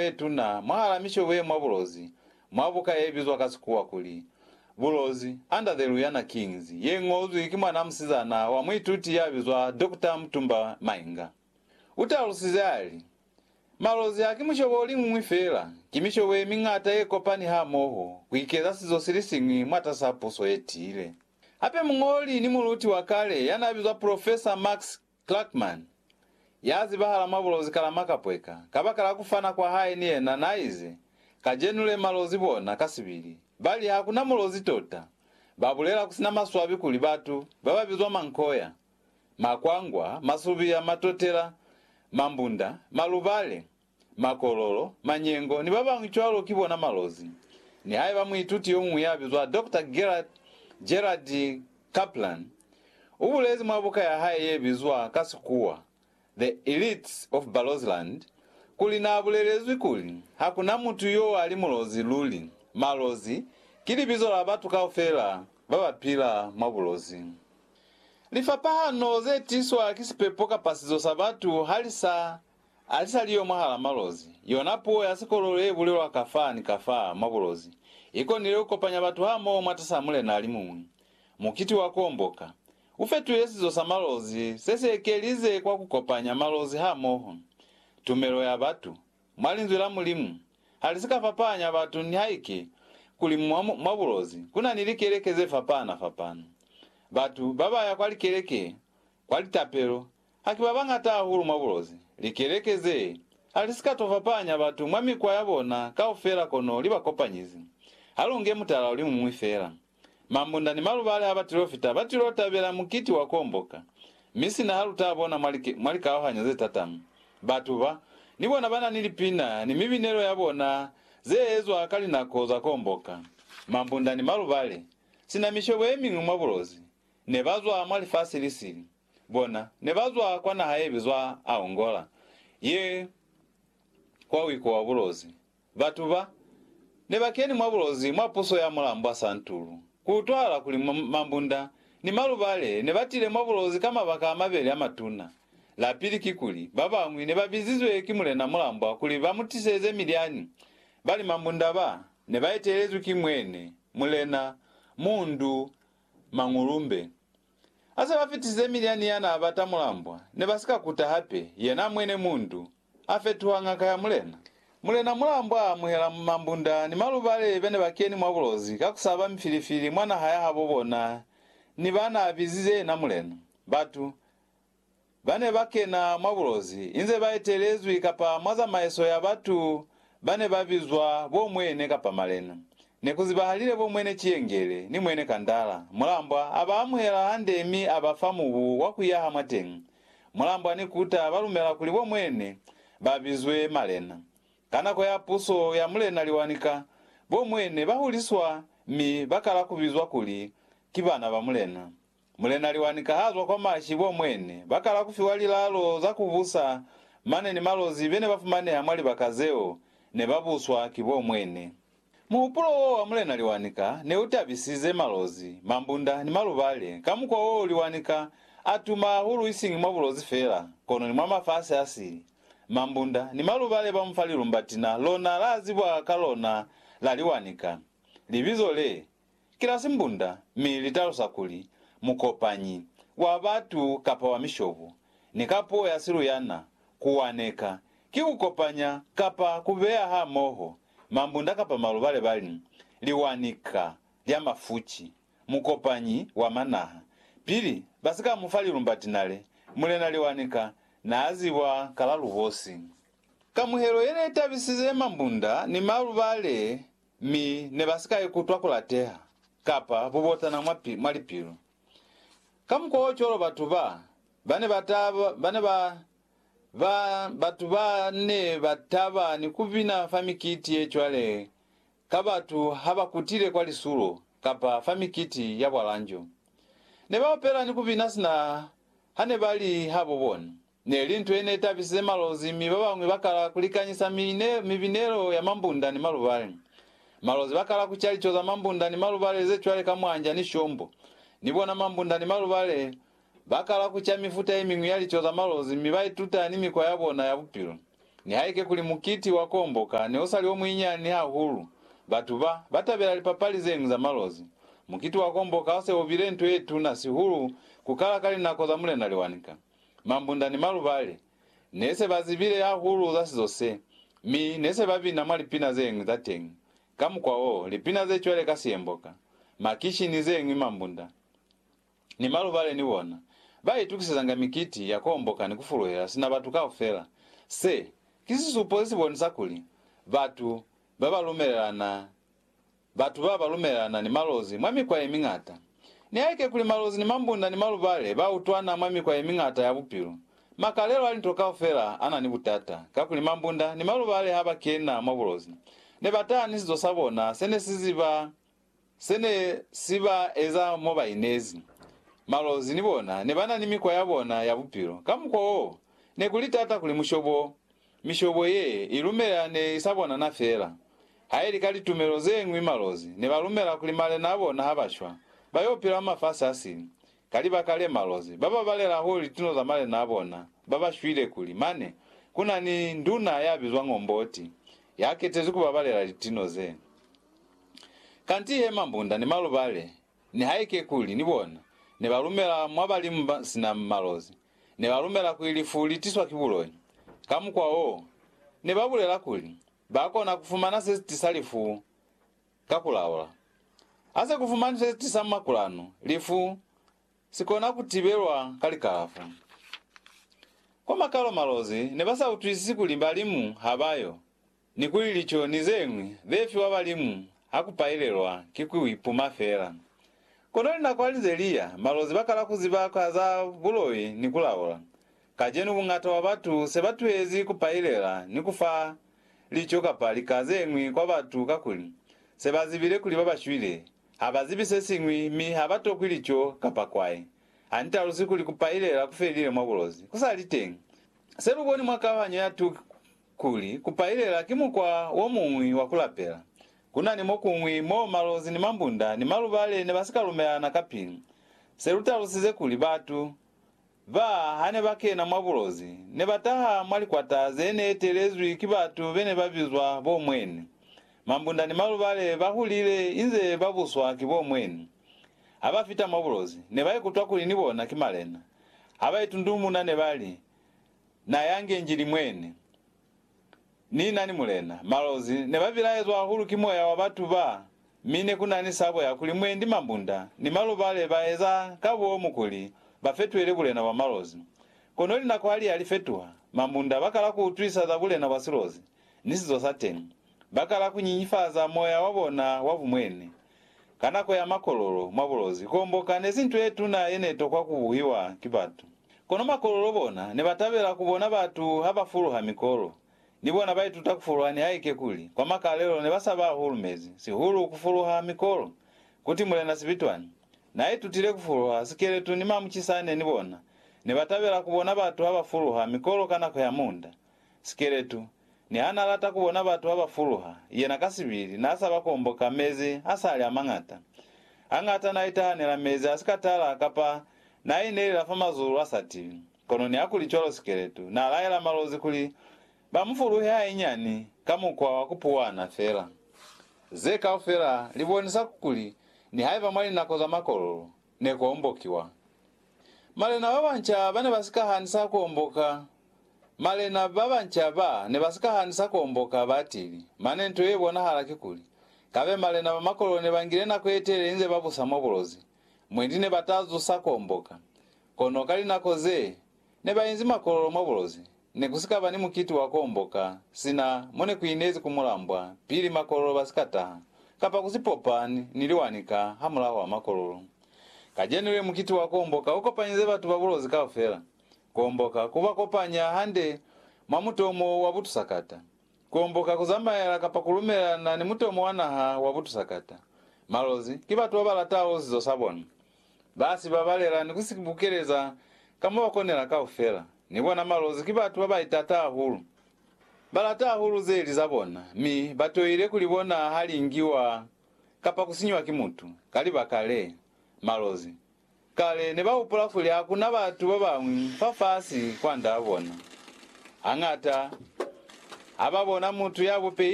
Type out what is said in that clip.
ye tuna mwahala mishobo ye mwa bulozi, mwa buka ye bizwa ka Sikuwa kuli, Bulozi, Under the Luyana Kings, ye ñozwi ki mwanaa musizana wa muituti ya bizwa Doctor Mutumba Mainga. U talusize a li, Malozi haki mushobo o liñwi feela, ki mishobo ye miñata ye kopani hamoho ku ikeza sizo si li siñwi mwatasaa puso ye tiile. Hape muñoli ni muluti wa kale ya naa bizwa Profesa Max Clarkman, ya zibahala mwa bulozi kala makapweka, kabakala ku fana kwa hae ni yena, na ize, Kajenu le malozi bona, kasibili, ba li, Hakuna mulozi tota. Ba bulela kusina maswabi kuli batu baba bizwa mankoya, makwangwa, masubiya, matotela, mambunda, malubale, makololo, manyengo, ni babañwi cwalo ki bona malozi. Nihaiba muituti yomuñwi yabizwa Doctor Gerhard, Gerald, Kaplan ubulezi mwa buka yahae yebizwa ka Sikuwa The Elites of Barrowsland kuli naabulelezwi kuli, Hakuna mutu yoali mulozi luli. Malozi ki libizo la batu kaufela babapila mwa bulozi. Lifapahano zetiswa ki sipepo kapa sizo sa batu halisa alisaliyo mwahala malozi. Yona puo ya sikololo yebulelwa kafaa ni kafaa mwa bulozi ikonile kukopanya batu hamoho mwatasaa mulena alimuñwi. Mukiti wa Kuomboka ufetwile sizo sa malozi sesiekelize kwa kukopanya malozi hamoho. Tumelo ya batu mwa Linzwi la Mulimu halisika fapahanya batu nihaike kuli mwa bulozi kunani likeleke zefapahana-fapahana. Batu babaya kwa likeleke, kwa litapelo, Ha ki babañata hahulu mwa bulozi, likeleke ze ha li si ka to fapahanya batu mwa mikwa ya bona kaufela kono li ba kopanyize. Ha lu nge mutala o li muñwi fela. Mambunda ni malubali ha ba tilo fita ba tilo tabela mukiti wa komboka, mi sina ha lu ta bona mwa mwa likauhanyo ze tatama, batu ba, ni bona ba na ni lipina ni mibinelo ya bona ze ezwa ka linako za komboka. Mambunda ni malubali, sina mishobo ye miñwi mwa bulozi, ne ba zwa mwa lifasi li sili. Bona ne ba zwa kwa naha ye bizwa Aongola, ye kwa wiko wa bulozi. Batu ba, ne ba keni mwa bulozi mwa puso ya Mulambwa Santulu. Ku utwahala kuli mambunda ni malubale ne ba tile mwa bulozi ka mabaka a mabeli a matuna. La pili kikuli, ba bañwi ne ba bizizwe ki Mulena Mulambwa kuli ba mu tiseze milyani, bali mambunda ba, ne ba etelezwi ki Mwene, Mulena, Mundu, Mangulumbe. Hase ba fitisize milyani ya n'a bata mulambwa, ne ba si ka kuta hape. Yena mwine mundu, a fetuha ngaka ya mulena. Mulena mulambwa a amuhela mambunda ni malubale be ne ba keni mwa bulozi ka ku saba mifilifili mwa naha ya habo bona ni ba n'a bizize yena mulena. Batu. ba ne ba kena mwa bulozi inze ba etelezwi kapa mwa zamaiso ya batu ba ne ba bizwa bo Mwene kapa Malena. Ne ku zibahalile bo Mwene Ciyengele ni Mwene Kandala. Mulambwa a ba amuhela hande mi a ba fa mubu wa ku yaha mwateñi. Mulambwa ni Kuta ba lumela kuli bo Mwene ba bizwe Malena. Ka nako ya puso ya Mulena Liwanika, bo Mwene ba huliswa mi ba kala ku bizwa kuli ki bana ba Mulena. Mulena Liwani ka ha zwa kwa mashi bo mwene, ba kala ku fiwa lilalo za ku busa mane ni malozi be ne ba fumaneha mwa libaka zeo ne ba buswa ki bo mwene. Muhupulo w'o wa Mulena Liwani ka ne u tabisize malozi, mambunda ni malubale ka mukwa wo Liwani ka a tuma hahulu isiñi mwa bulozi fela, kono ni mwa mafasi a sili. Mambunda ni malubale ba mu fa lilumbatina lona la zibwa ka lona la Liwani ka. Libizo le, ki la simbunda mi li talusa kuli mukopanyi wa batu kapa wa mishobo, ni ka puo ya siluyana, ku waneka, ki ku kopanya kapa ku beya hamoho mambunda kapa maluba le ba li, liwanika lya mafuci, mukopanyi wa manaha. Pili ba si ka mu fa lilumba tinale, Mulena Liwanika naa ziba ka la lubosi. Kamuhelo ye ne tabisize mambunda ni maluba le Mi ne ba si ka ikutwa kulateha kapa bubotana mwa, mwa lipilu. Kamukwaocwalo batu ba, ba ne ba ta, ba ne ba, ba, batu ba ne ba taba ni kubina fa mikiti ye cwale ka batu ha ba kutile kwa lisulo kapa fa mikiti ya bwalanjo. Ne ba opela ni kubina sina ha ne ba li habo bona. Ne li nto ye ne tabisize Malozi mi ba bañwi ba kala ku likanyisa mibinelo ya mambunda ni malubale. Malozi ba kala ku ca lico za mambunda ni malubale ze cwale ka mwanja ni shombo. Ni bona mambunda ni malubale ba kala ku ca mifuta ye miñwi ya lico za malozi mi ba ituta ni mikwa ya bona ya bupilo. Nihaike kuli mukiti wa ku omboka ne u sa li o muinyani hahulu, batu ba ba tabela lipapali ze ñwi za malozi. Mukiti wa ku omboka u se u bile nto ye tuna sihulu ku kala ka linako za Mulena Liwanika. Mambunda ni malubali ne se ba zibile hahulu za sizo se, mi ne se ba bina mwa lipina ze ñwi za teñi. Ka mukwa wo, lipina ze cwale ka Siyemboka, Makishi ni ze ñwi mambunda ni malubali ni bona ba itukisezanga mikiti ya ku homboka ni ku fuluhela sina batu kaufela. Se, ki sisupo se si bonisa kuli batu ba ba lumelelana Batu ba ba lumelana ni malozi mwa mikwa ye miñata. Nihaike kuli malozi ni mambunda ni malubale ba utwana mwa mikwa ye miñata ya bupilo, makalelo a linto kaufela a na ni butata, kakuli mambunda ni malubale ha ba kena mwa bulozi, ne ba taha ni sizo sa bona se ne si ziba se ne si ba eza mo ba inezi. Malozi ni bona ne ba na ni mikwa ya bona ya bupilo. Ka mukwa wo, ne ku li tata kuli mushobo Mishobo ye i lumela ne i sa bonana feela. Ha i li ka litumelo ze ñwi malozi ne ba lumela kuli malena a bona ha ba shwa, ba y'o pila mwa mafasi a sili. Ka libaka le, malozi ba babalela hahulu litino za malena a bona ba ba shwile kuli mane ku na ni nduna ya bizwang Omboti ya ketezwi ku babalela litino ze. Kanti he mambunda ni malubale Nihaike kuli ni bona ne ba lumela mwa balimu ba sina malozi, ne ba lumela kuli lifu li tiswa ki buloi. Ka mukwa wo, ne ba bulela kuli ba kona ku fumana se si tisa lifu ka ku laula. Ha se ku fumanwi se si tisa makulanu, lifu si kona ku tibelwa ka likalafo. Kwa makalo malozi ne ba sa utwisisi kuli balimu ha ba yo Ni kuli lico ni zeñwi ze fiwa balimu ha ku pailelwa ki ku ipuma fela. Kono linako ha li ze li ya, malozi ba kala ku ziba ka za buloi ni ku laula. Kacenu bungata bwa batu se ba tuhezi ku pailela ni ku fa lico kapa lika zeñwi kwa batu kakuli se ba zibile kuli ba ba shwile ha ba zibi se siñwi mi ha ba tokwi lico kapa kwai. Ha ni talusi kuli ku pailela ku felile mwa bulozi ku sa li teñi. Se lu boni mwa kauhanyo ya 2 Kuli, ku pailela ki mukwa wo muñwi wa ku lapela. Ku na ni mo kuñwi mo malozi ni mambunda ni malubale ne ba si ka lumelana ka pilu. Se lu talusize kuli batu ba ha ne ba kena mwa bulozi, ne ba taha mwa likwata ze ne etelezwi ki batu be ne ba bizwa bo mweni. Mambunda ni malubale ba hulile inze ba buswa ki bo mweni. Ha ba fita mwa bulozi, ne ba ikutwa kuli ni bona ki malena. Ha ba itundumuna ne ba li, Na yange Njili mwene. Ni na ni Mulena. Malozi ne ba bilaezwa hahulu ki moya wa batu ba, mi ne ku na ni sabo ya kuli mwendi mambunda ni malubale ba eza ka bomu kuli ba fetwele bulena bwa malozi. Kono linako ha li ya li fetuha, mambunda ba kala ku utwisa za bulena bwa silozi ni sizo sa teñi. Ba kala ku nyinyifaza moya wa bona wa bumwene. Ka nako ya makololo mwa bulozi, kuomboka nezi nto yetuna yenetokwa kubuhiwa ki batu. Kono makololo bona nebatabela kubona batu habafuluha mikolo. Ni bona baituta kufuluha nihaike kuli kwa makalelo nebasaba hahulu mezi, sihulu kufuluha mikolo. Kuti Mulena Sibitwani naaitutile kufuluha sikeletu ni mamucisane ni bona nebatabela kubona batu habafuluha mikolo ka nako ya munda. Sikeletu, niha n'a lata ku bona batu ha ba fuluha, yena ka sibili n'a sa ba komboka mezi a sa li a mañata. Hañata n'a itahanela mezi a si ka tala kapa n'a inelela fa mazulu a sa tibi. Kono nihakulicwalo Sikeletu n'a laela malozi kuli ba mu fuluhe hainyani ka mukwa wa ku puwana fela. Ze kaufela li bonisa kuli nihaiba mwa linako za makololo, ne ku ombokiwa. Malena ba banca ba ne ba si ka hanisa ku omboka. Malena ba banca ba ne ba si ka hanisa ku omboka batili, mane nto ye bonahala kikuli, kabe malena ba makololo ne ba ngile nako ye telele inze ba busa mwa bulozi, mwendi ne ba ta zusa ku omboka. Kono ka linako ze ne ba inzi makololo mwa bulozi, ne ku si ka ba ni mukiti wa ku omboka sina mo ne ku inezi ku mulambwa pili makololo ba si ka taha, kapa ku si popa ni liwani ka hamulaho wa makololo. Kacenu le mukiti wa ku omboka u kopanyize batu ba bulozi kaufela. Ku omboka ku ba kopanya hande mwa mutomo wa butusakata. Ku omboka ku zamaela kapa ku lumelelana ni mutomo wa naha wa butusakata. Malozi ki batu ba ba lataho sizo sa bona. Ba si babalela ni ku si bukeleza ka mo ba konela kaufela. Ni bona malozi ki batu ba ba itata hahulu. Ba lata hahulu ze li za bona, mi ba toile ku li bona ha li ngiwa kapa ku sinyiwa ki mutu. Ka libaka le, malozi. Kale ne ba hupula kuli ha ku na batu ba bañwi fafasi kwand'a bona. Hañata ha ba bona mutu ya bupei